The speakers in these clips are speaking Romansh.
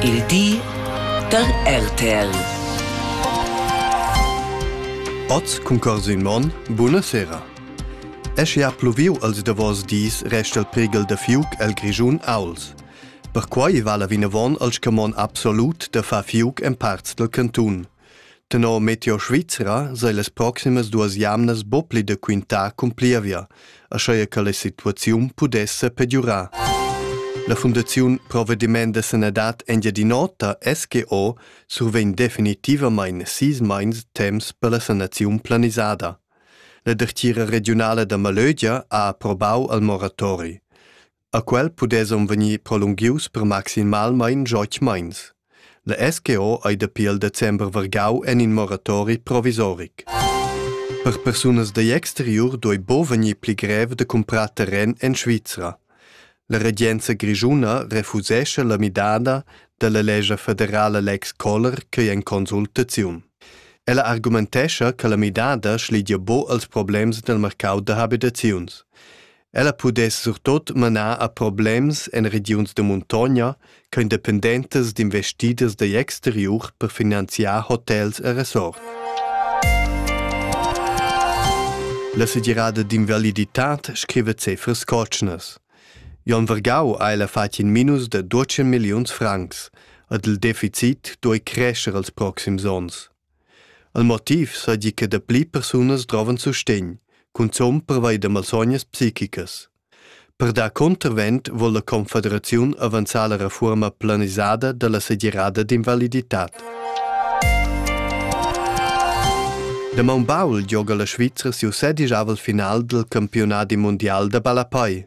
Il di da RTL. Oz concorso in mon, buna sera. Esche ha pluviu als davos dis resta il prighel da fiuc el Grischun Auls. Perquai vala vinavon al scamon absolut da far fiuc en parts del cantun. Tenor Meteo Svizra sei las proximas duas jamnas buc pli da quintar cun plievia, aschia che la situaziun pudesse pegiurar. La Fundaziun Provvediment da sanadad Engiadin'Ota SGO survegn definitivamain sis meins temps per la sanaziun planisada. La dertgira regiunala da Malögia ha approbau al moratori. A quel pudessan vegnir prolunghius per maximalmain joch meins. La SGO ei dapi il december vargau en in moratori provisoric. Per persunas dagl exteriur doi bo vegnir pli grev da cumprar terren en Svizra. La regenza grischuna refusescha la midada dalla legge federala Lex Koller che è in consultaziun. Ella argumentescha che la midada schlidia bo als problems del mercau da habitaziuns. Ella pudess surtot manar a problems en regiuns da muntogna ch'ein dependentas d'investiders digl exteriur per finanziar hotels e resorts. La segirada d'invaliditad scrive cifras cotschnas. Jon Vergau ha ella fatg in minus de 12 milliuns francs, ed il deficit duei crescer els proxims onns. El motiv seigi che dapli persunas drovan sustegn, cunzun pervei da malsognas psichicas. Per dar contravent vol la Confederaziun avanzar la reforma planisada dalla segirada d'invaliditad. Da maun baul gioga la Svizra siu sedijavel final dal campionadi mundial da ballapei.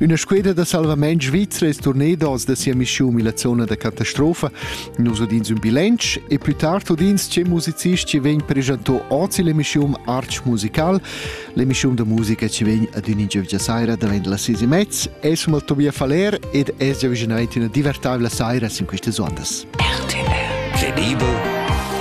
Üna squeda da salvament svizra es turneda oz da sia mischiun illa zona da catastrofa. Nus udins ün bilanc e plü tard udins che musicist chi vegn preschanto oz illa mischiun Arch Musical, l'emischiun da musica chi vegn ad ün ingiövgia saira davent las sis e mezz. Es mal Tobias Faller ed es giavüschanaint üna divertabla saira sin quistas ondas. RTL Tenibel